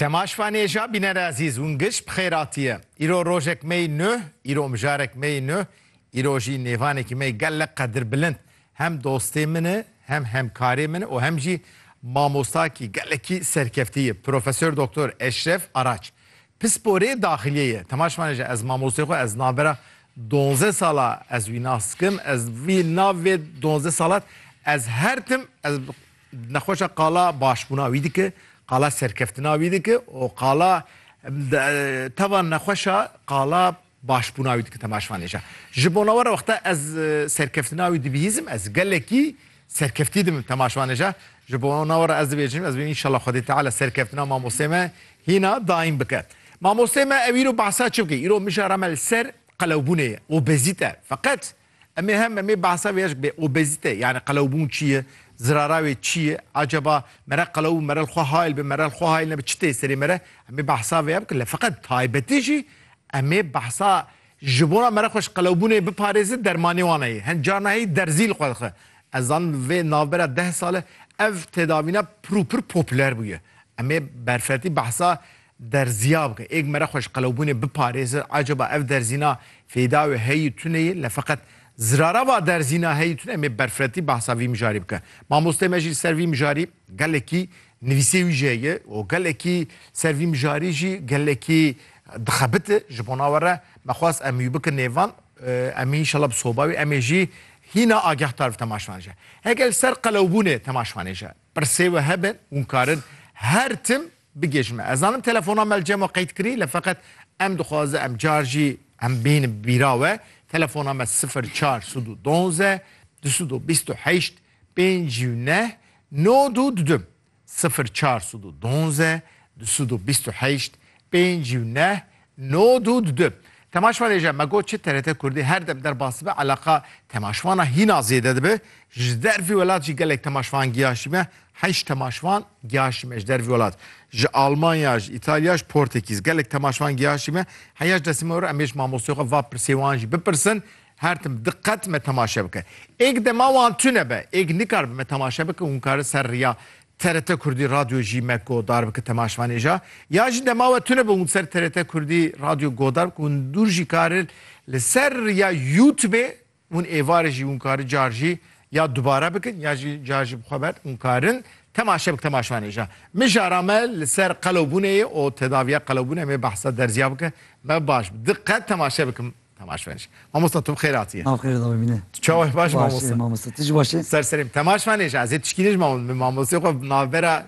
Temaş Vanêja bînere ezîz hûn giş bi xêratî ye. Îro rojek me yî nuh, îro mijarek me yî nuh, îro jî nêvanekî me yî gelek qedirbilind. Hem dostê min e, hem hemkarê min e û hem jî mamostakî gelekî serkeftî ye. Profesor Doktor Eşref Araç. Pisporê daxiliyê ye. Temaş Vanêja ez mamostê xwe ez navbera donzdeh sala ez wî nas dikim. Ez vî navê donzdeh salat ez her tim ez Nexweşa qala başbûna wî dike, qala serkeftina wî dike û qala teva nexweşa qala başbûna wî dike temaşvanê jî. Ji bona we re wexta ez serkeftina wî dibihîzim ez gelekî serkeftî dibim temaşvanê jî. Ji bona we re ez dibêjim ez bim înşallah Xwedê Teala serkeftina mamosteyê me hîna daîm bike. Mamosteyê me ew îro behsa çi bike? Îro mijara me li ser qelewbûnê ye, obezîte. Feqet Em ê hem em ê behsa vê bê obezîte yanî qelewbûn çi ye, zirara wê çi ye, acaba mere qelew bû mere li xwe hayl be mere li xwe hayl nebe çi tê serê me re em ê behsa vê ya bikin. Lê feqet taybetî jî em ê behsa ji bona mere xwe ji qelewbûnê biparêzin dermanê wan heye. Hin carna heye derzî li xwe dixe. Ez zanim vê navbera deh sal e ev tedavîna pir û pir popüler bûye. Em ê berfetî behsa Derziya bike, êk mere xwe ji qelewbûnê biparêze, acaba ev derzîna fêda wê heyî tune yê, lê feqet zirara va derzîna heyî tune em ê berfiretî behsa vî mijarî bikin. Mamosteyê me jî li ser vî mijarî gelekî nivîsê wî jî heye û gelekî ser vî mijarî jî gelekî dixebite. Ji bona we re me xwest em wî bikin nêvan. Em ê înşela bi soba wî em ê jî hîna agehtar bi temaşvanê je. Heke li ser qelewbûnê temaşvanê je pirsê we hebe, hûn karin her tim Bigê ji me. Ez zanim telefona me li cem a qeyd kirî le feqet em dixwaze em car jî em bînin bi bîra we. Telefona me sifir çar sud û donze du sud û bîst û heşt pênc û neh nod û du dim. Sifir çar sud û donze du sud û bîst û heşt pênc û neh No du di du. Temaşvan êje me got çi TRT Kurdî her dem derbas dibe eleqa temaşvana hîna zêde dibe. Ji der vî welat jî gelek temaşvan giyaşîme. Heşt temaşvan giyaşîme ji der vî welat. Ji Almanya, ji Îtalya, ji Portekîz gelek temaşvan giyaşîme. Heya ji destê me were em ê ji mamosteya xwe va pirsê wan jî bipirsin. Her tim diqet me temaşe bike. Êk dema wan tune be, êk nikaribe me temaşe bike û hûn kare ser riya TRT Kurdî Radyo jî me ko dar bike temaşvanê ja. Ya jî dema we tune bûm ser TRT Kurdî Radyo go dar bike hûn dûr jî kari li ser ya Youtubê hûn êvarê jî hûn kari car jî ya dubare bikin ya jî car jî bi xwe ver hûn karin temaşe bike temaşvanê ja. Mi jara me li ser qelewbûnê yê û tedaviya qelewbûnê mê behsa derzîya bike me baş bi diqet temaşe bikim. Temaşvenêj. Mamosta tu bi xêr hatiyê. Ma bi xêr re da bibîne. Tu çawa yî baş î mamosta? Baş ê mamosta. Tu jî baş î? Ser serê min. Temaşvenêj ez ê tişkînê ji min mamostê xwe navbera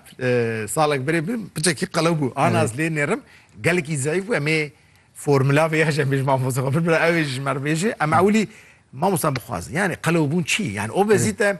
salek berê bû piçekî qelew bû. Anas lê nêrim gelekî zeyf bû em ê formula vê ya ji em ê ji mamostê xwe birbira ew ê ji merivêjê em ewilî mamosta bixwazin. Yanî qelewbûn çi ye? Yanî obezîte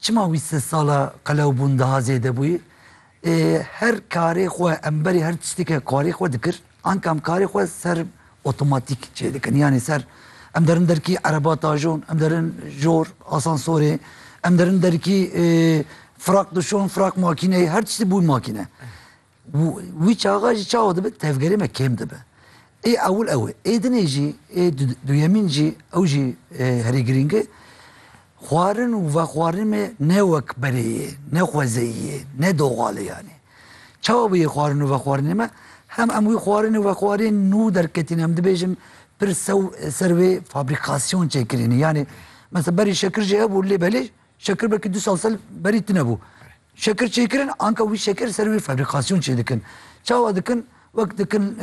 Çima wî sê sala qelewbûn daha zêde bûyî? Ê her karê xwe em berî her tiştî ke karê xwe dikir anka em karê xwe ser otomatîk çêdikin yanî ser em derin derkî ereba tajon em derin jor asansorê em derin derkî firaq dişon firaq makîneyê her tiştî bû makîne. Wî çaxa jî çawa dibe tevgerê me kêm dibe. Ê ewil ew e. Ê dinê jî, ê duyemîn jî ew jî herî girîng e. Xwarin û vexwarinê me ne wek berê ye, ne xwezeyî ye, ne doxal e yanî. Çawa bûye xwarin û vexwarinê me? Hem em wî xwarin û vexwariyê nû derketîne em dibêjin pir ser wê fabrîkasyon çêkirîne. Yanî mesela berî şekir jî hebû lê belê şekir belkî du sal sel berî tunebû. Şekirçêkirin anka wî şekir ser wî fabrîkasyon çêdikin. Çawa dikin? Wek dikin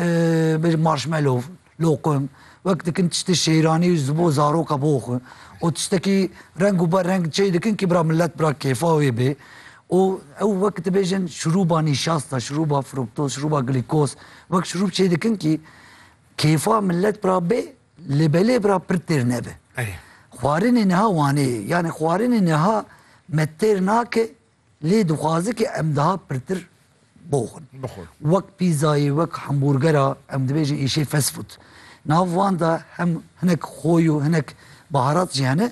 bêje marshmallow, loqim, wek dikin tiştê şêranî ji bo zaroka bo xwe û tiştekî reng û be reng çê dikin kî bira milet bira kêfa wê bê û ew wek dibêjin şirûba nîşasta, şirûba fruktoz, şirûba glîkoz wek şirûb çêdikin kî kêfa milet bira bê Lê belê bira pir têr nebe. Xwarinê niha Wanê ye. Yanî xwarinê niha me têr nake lê dixwaze ke em daha pirtir boxin. Wek pîzayê, wek hemburgera em dibêjin êşê fast food. Nav wan de hem hinek xo yo hinek baharat jî hene.